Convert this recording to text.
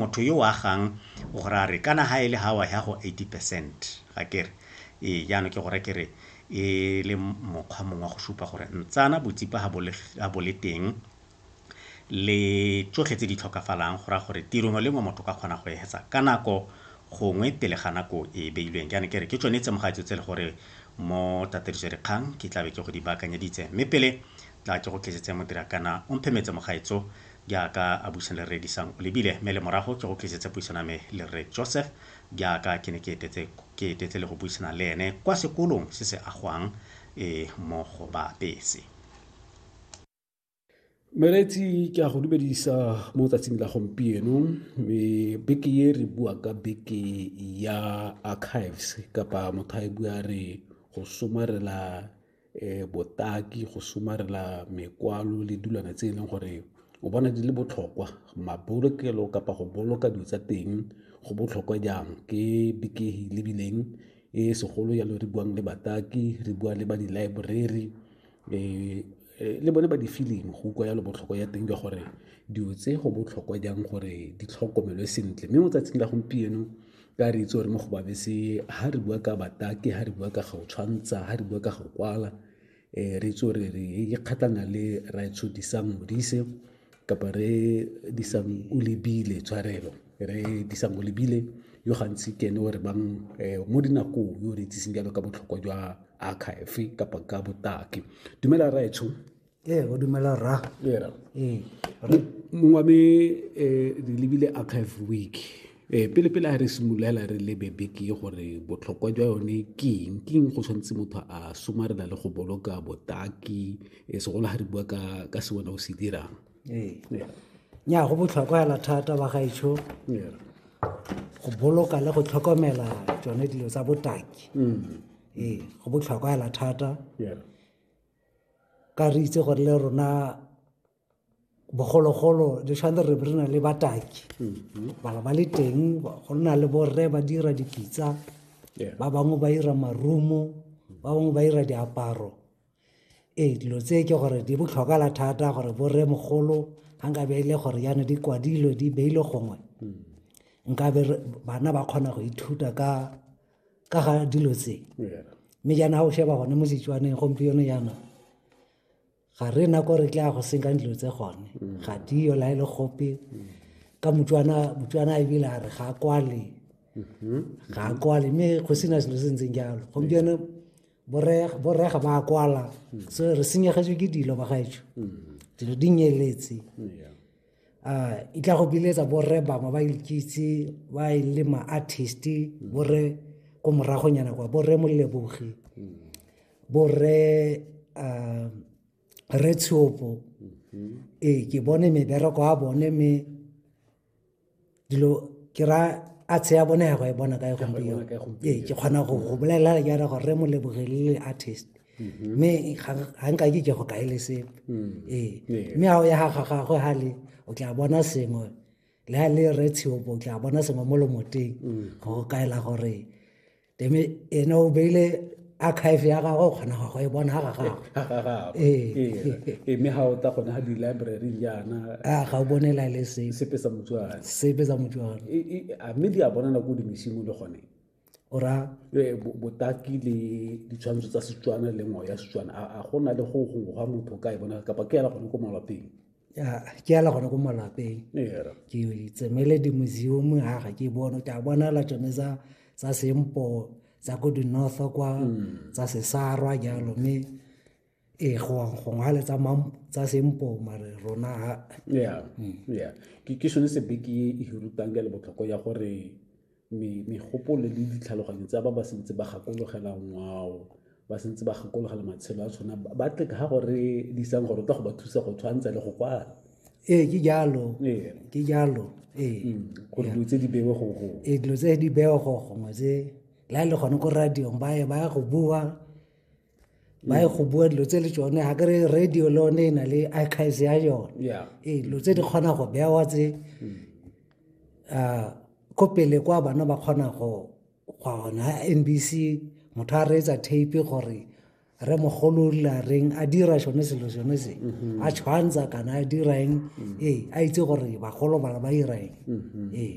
Motho yo o agang o go raya a re, Kana ha e le ha wa ya go eighty percent, ga ke re? Ee, jaanong ke go raya ke re, e le mokgwa mongwe wa go supa gore ntsana botsipa ga bo le, ga bo le teng, le tsotlhe tse di tlhokafalang, go raya gore tiro nngwe le nngwe motho o ka kgona go e etsa ka nako gongwe pele ga nako e e beilweng. Jaanong ke re, ke tsone tsemogatso tse e le gore mo tataediso-dikgang ke tlabe ke go di baakanyeditse. Mme pele tla ke go tlisetse Modirakana Omphemetse Mogaetso, jaaka a busa le Rre Disang o lebile, mme le morago ke go tlisetse puisano ya me le Rre Joseph jaaka ke ne ke etetse ke etetse le go buisana le ene kwa sekolong se se agwang e mo go Baapese. Meretsi ke a go dumedisa mo tsatsing la gompieno mme beke e re bua ka beke ya archives kapa motho a e bua re go somarela eh, botaki go somarela mekwalo le dilwana tse e leng gore o bona di le botlhokwa mabolokelo kapa go boloka dilo tsa teng go botlhokwa jang ke bekehi lebileng e segolo yalo re buang le bataki re bua le ba di-library eh, Eh, le bone ba di-feeling go utlwa yalo botlhokwa ya teng jwa gore dilo tse go botlhokwa jang gore di tlhokomelwe sentle mme mo tsatsing la gompieno ka re itse gore mo go babese ha re bua ka batake ha re bua ka go tshwantsha ha re bua ka go kwala um re itse gore re ikgatlana le raetsho disang modise kapa re disang o lebile tshwarelo re disang o lebile yo gantsi ke ene o re bang um mo dinakong yo re itseseng jalo ka botlhokwa jwa archive kapa ka botaki dumela raetsho ee o dumela ra ee mongwame eh, re lebile archive week um pele pele a re simololela re lebe beke gore botlhokwa jwa yone keng keng go tshwanetse motho a somarela le go boloka botaki eh, segolo ga re bua ka se wena o se dirang ee nya go botlhokwa fela thata ba gaetsho go boloka le go tlhokomela tsone dilo tsa botaki mm. ee go botlhokwa fela thata ka re itse gore le rona bogologolo le tshwane re re na le bataki bala ba le teng go nna le borre ba dira dipitsa ba bangwe ba dira marumo ba bangwe ba dira diaparo ee dilo tse ke gore di botlhokala thata gore borre mogolo ga nka be e le gore yana di kwadilwe di beile gongwe nkabe bana ba kgona go ithuta ka ka ga dilo tse mme jaana o sheba gone mo setswaneng gompieno jaana ga re na kore tla go senkang dilo tse gone mm. ga diyo la e le gope mm. ka motswana motswana a ebile a re ga kwale mm-hmm. ga kwale mme go sena selo se ntseng jalo gompieno borega ba kwala mm. so re senyegetswe ke dilo ba gaetsho dilo di nyeletse uh, e tla go biletsa borre bangwe ba ikitse ba e le ma-artist mm. borre ko moragonyana kwa borre molebogi mm. borre uh, re tshopo mm-hmm. ee ke bone mebereko a bone me dilo ke ra a tsheya bone ya go e bona ka e gompieno ee ke kgona go go bolelela ke ra gore re mo lebogelele artist mm-hmm. mme ga nka ke ke go kae le sepe mm. ee mme ga o ya ga gagwe ga le o tla bona sengwe le ga le re tsheopo o tla bona sengwe mo lomoteng mm. go kaela gore ene o beile archive ya gagwe o kgona go e bona ga gagweme ga o ta gone ga di-library jaana a ga o bonela le sepe sa motswana sepe sa motswana mme di a bonana ko dimesimo le gone ora botaki le ditshwantsho tsa setswana le ngwao ya setswana a go na le go gongwe ga motho ka e bona kapa ke ela gone ko malwapeng ya ke ala gone ko malapeng ke tsemele di-museum ga ga ke bone ke a bonala tsone tsa tsa sempo tsa ko di-north kwa hmm. tsa sesarwa jalo mme ee gongwe le tsa sempo mare rona ga ya hmm. ya ke sone sebe ke e rutang ka le botlhoko ya gore megopolo le ditlhaloganyo tsa ba ba sentse ba gakologela ngwao ba sentse ba gakologela matshelo a tshwana ba tle ga gore di isang gore o tla go ba thusa go tshwantsha le go kwala ee ke jalo ke jalo ee mm, gore dilo tse di bewe go go ee dilo tse di bewe go gongwe tse la e le gone ko radiong ba ye ba ya go bua ba e go bua dilo tse le tsone ga kere radio le one e na le archives ya yone ee dilo tse di kgona go bewa tse mm. ah, ko pele kwa bana ba kgona go gona n b c motho a reetsa tape gore re mogolola reng a dira sone selo sone se mm-hmm. a tshwantsha kana a dira eng mm. ee a itse gore bagolo bana ba ira eng mm-hmm. ee